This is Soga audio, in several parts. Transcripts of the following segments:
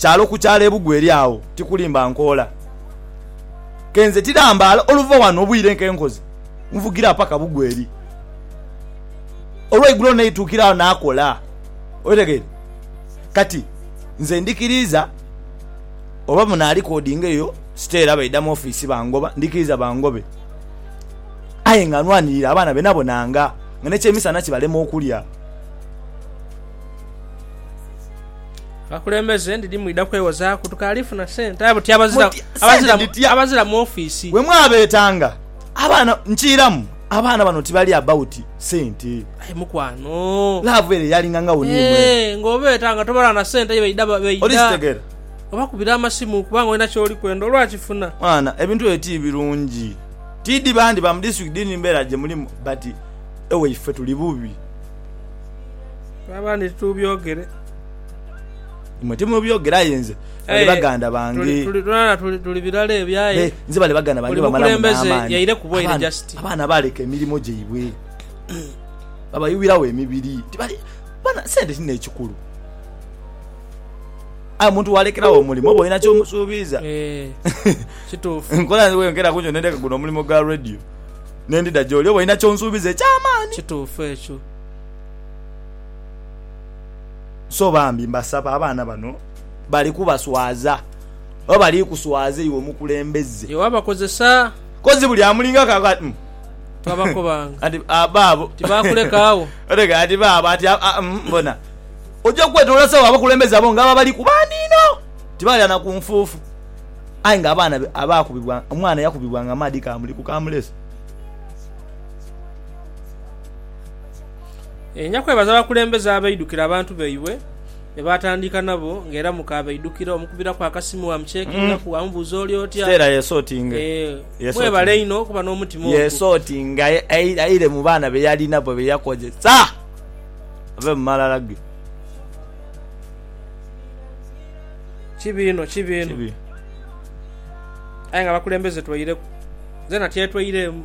Kyalo ku kyalo ebugwe eri agho, tikulimba nkoola. Ke nze tirambaala oluva ghano obwire nke nkoze, nvugira paka bugwe eri. Olweigulo naituukira agho naakola. Otegeera? Kati, nze ndikiriiza oba munaalikodinga eyo siteera baidha mu ofiisi bangoba, ndikiriiza bangobe. Aye nga nwanirira abaana benabonanga nga n'ekyemisana kibalema okulya. Abakulembeze ndidhi mwidha kwewozaaku tukaali funa sente. Abo ti abazira, Muti- sente abazira, dhitya? abazira mu ofiisi. We mwabeetanga abaana, nkiiramu abaana bano tibali about sente. Aye mukwano. Laavu ere yalinga nga woni imwe. Eh, ng'obeeta nga tobala na sente ye baidha ba- baidha. Olikitegera? Obakubira amasimu kubanga olina ky'oli kwenda olwakifuna. Mwana, ebintu ebyo ti birungi. Tidhi bandi ba mu district didhi mbeera gye mulimu but ewaife tuli bubi. Oba abandi titubyogere. Imwe timubyogere aye nze bali eh, baganda bange tulirana tuli birala ebyo aye nze bali baganda bange bamalamu n'amaani yaire ku bwaire just abaana baaleka emirimu gyaibwe babayuwirawo emibiri tibali bana sente kino ekikulu aye omuntu walekerawo omulimu oba olina kyomusuubiza eh, kituufu nkola wenkera kunjo nendeka guno omulimu gwa radio nendida gyoli oba olina kyonsuubiza ekyamaani kituufu ekyo So bambi mbasaba abaana bano bali kubaswaza oba bali kuswaza iwe omukulembeze? Iwe abakozesa. Kozi buli amulingako akoba ati umm. Twabakobanga. Kati baabo. Tibaakuleka agho. Otegera kati baabo ati umm bona. Oja kwetolola sawa abakulembeze abo ngabo abali kubandi inho. Tibalira na ku nfuufu. Aye nga abaana be abaakubibwa, omwana yakubibwanga amaadhi kaamuli ku kaamulesi. Enyinja kwebaza bakulembeze abaidhukira abantu baibwe be baatandika nabo nga era mukaabaidhukira omukubiraku akasimu waamucekingaku waamubuuza oli otya. Mwebale inho okuba n'omutima ogwo. Yeesootinga aire mu baana be yali nabo be yakozesa ave mu malala ge. Kibi inho, kibi inho. Aye nga abakulembeze twaireku. Nzena tyetwaireemu.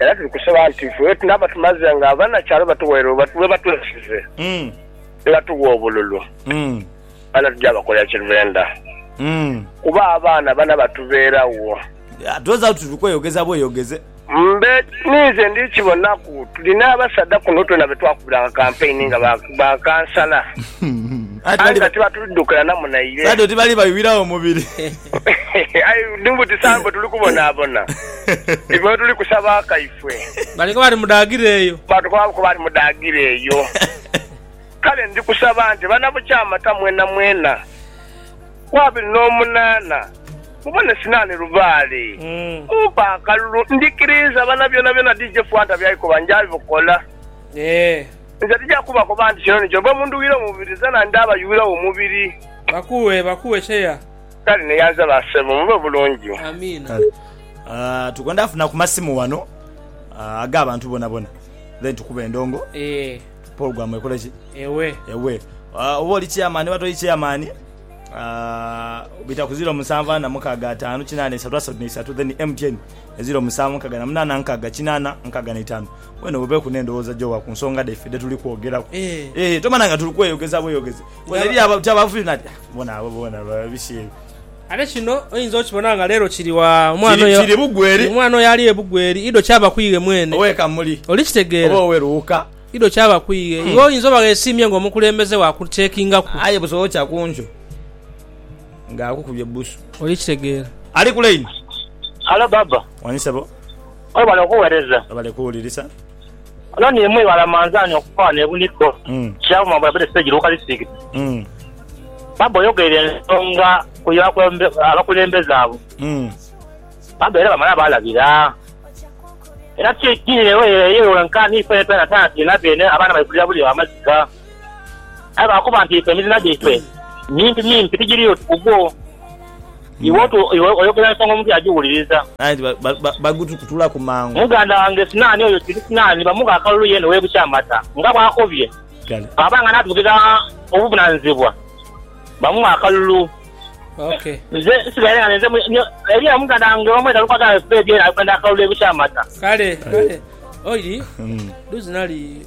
Era tuli kusaba nti ife bwetunaaba tumaze nga abanakyalo batuweere webatwesize nibatuwa obululu, abaana tuja bakolera kye benda kuba abaana bana batubeeragho. Twoza tuli kweyogeza bweyogeze. Mbe ninze ndi kibonaku. Tulina abasaadha kuno twena be twakubiranga kampeyini nga ba kansala aye nga tibatudukira na munaire. Aye ni buti saha mbu tuli kubonaabona. Ife wetuli kusaba akaife. Baliku bali mu daagira eyo. Baatukomaku bali mu daagira eyo. Kale ndi kusaba nti banabukyamata mwenamwena ku abiri n'omunaana mubone sinaani lubaale. Mumpe akalulu. Ndikiriiza bana byonabyona DJ Fanta by'aikoba nja bikola. Nze tija kubakoba nti kino ni kyo. Bwe mundhuwira omubiri, zena ndaabayuwiragho omubiri. Bakuwe, bakuwe chair. Kale neyanza ba sebo mube bulungi. Amiina. Kale tukwenda funa ku masimu wano aga abantu bona bona then tukube endongo program ekole ki ewe ewe oba oli chairman oba toli chairman bita ku ziro musanvu ana mukaga atano kinana esatu asatu ne isatu then MTN eziro musanvu nkaga na munana nkaga kinana nkaga ne itano wena obeku ne ndowoza jowa ku nsonga dhaife dhe tuli kwogeraku tomana nga tuli kweyogeza bweyogezi. Ate kino oinza okibona nga leero kiri wa? Omwana oyo ali e Bugweri, idho kyaba ku iwe mwene. Oli kitegeera? Idho kyaba ku iwe. Iwe oinza oba ghesiimye ng'omukulembeze wa kucekingaku. Oli kitegeera? Ono ni mwi bala manzani okufa ne bunigo kya buma bwa bere stage luka district. Baba oyogeire ensonga ku ya abakulembeze abo baba era bamala balabira era kigire eyo wenka ni fene fena tana tulina bene abaana baikulira buli amaziga. Aye lwakuba nti ife emizina gyaife mimpimimpi, tigiriyo tugugwo. Iwe otu iwe oyogera ensonga omuntu yagiwuliriza. Aye nti bagututulaku mangu. Muganda wange Sinaani oyo kiri Sinaani bamugha akalulu yeene ow'e Bukyamata nga bw'akobye. Bw'aba nga n'atugirira obuvunaanyizibwa bamughe akalulu. Nze nsigaire nga ninze mwe. Eriyo muganda wange omu era lukwago aghebedde era ali kwenda akalulu e Bukyamata. Kale, kale. Oiri, duuzi nali.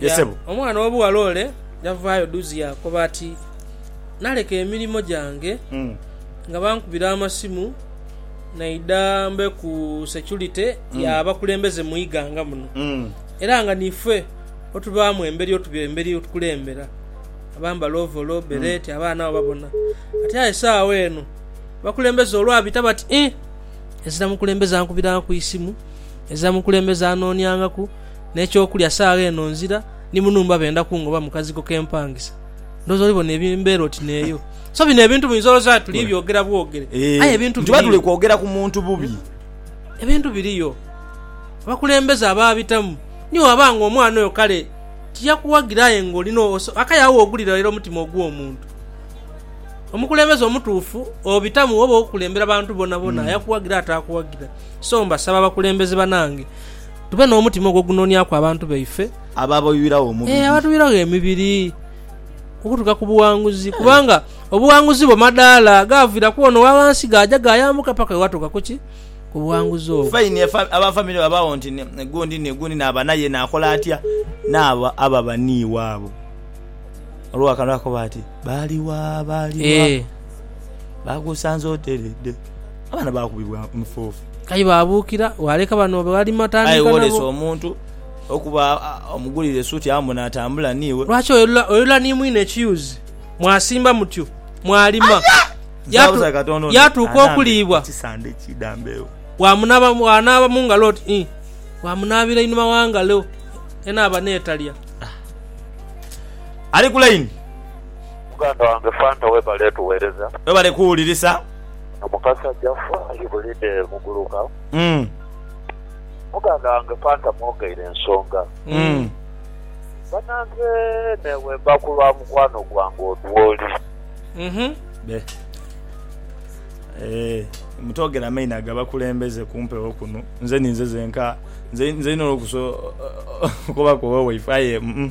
Ye sebo. Omwana ow'obughala ole yavaayo duuzi yaakoba ati, Naleka emirimo gyange nga bankubira amasimu naidha mbe ku securite y'abakulembeze mu ighanga muno era nga niife otubaamu emberi otuba emberi otukulembera abambala ovolo, bereti, abaana abo babona. Ati aye saagho eno abakulembeze olwabita bati, Ih, ezira mukulembeze ankubiraangaku eisimu, ezira mukulembeze anooniangaku. n'eky'okulya saagha eno nzira ni mu nhumba benda kungoba mu kazigo ke mpangisa. Ndhooza oli bona embeera oti n'eyo. So bino ebintu muinza oloza nti tuli byogera bwogere, aye ebintu biriyo. Eeh, nituba tuli kwogera ku muntu bubi. Ebintu biriyo. Abakulembeze abaabitamu ni waba ng'omwana oyo kale tiyakuwagira aye ng'olina akayo agho w'ogulira lera omutima ogw'omuntu. Omukulembeze omutuufu obitamu oba okulembera bantu bonabona, ayakuwagira ataakuwagira. So mbasaba bakulembeze banange. Tube n'omutima ogw'okunonyaku abantu baife. Abo abatuyuiragho omubiri. Ee, abatuyuiragho emibiri okutuuka ku buwanguzi, kubanga obuwanguzi bwo madaala gaavira ku ono owa ghansi gaaja gaayambuka paka wewatuuka ku ki? Ku buwanguzi obwo. Fine, aba famire babaagho nti gundi ni gundi naaba naye naakola atya? Naabo ababa ni iwaabo. Olw'akantu akakoba ati, Baali wa? Baali wa? Bagusanze oteredde. Abaana baakubibwa omufuufu. Aye baabuukira, waaleka bano be wali matandhika nabo. Aye woolese omuntu okuba omugulire esuuti amu n'atambula n'iwe. Lwaki oyolula oyolula ni mwine ekiyuzi? Mwasimba mutyo, mwalima, yaatuuka okuliibwa, waamunaaba waanaaba mu ngalo oti ii, waamunaabira einhuma wa ngalo, enaaba n'etalya. Ali ku line. Muganda wange Fanta webale tuwereza. Webale kuwulirisa. Omukazi aja fa ibulide muguluka. Muganda wange Fanta mwogeire ensonga. Banange newemba kulwa mukwano gwange odwoli. Be. Eeh mutogera maina gabakulembeze kumpewo kuno nze ninze zenka nze nze nina olukusa okubaku owewaifo aye uhmm.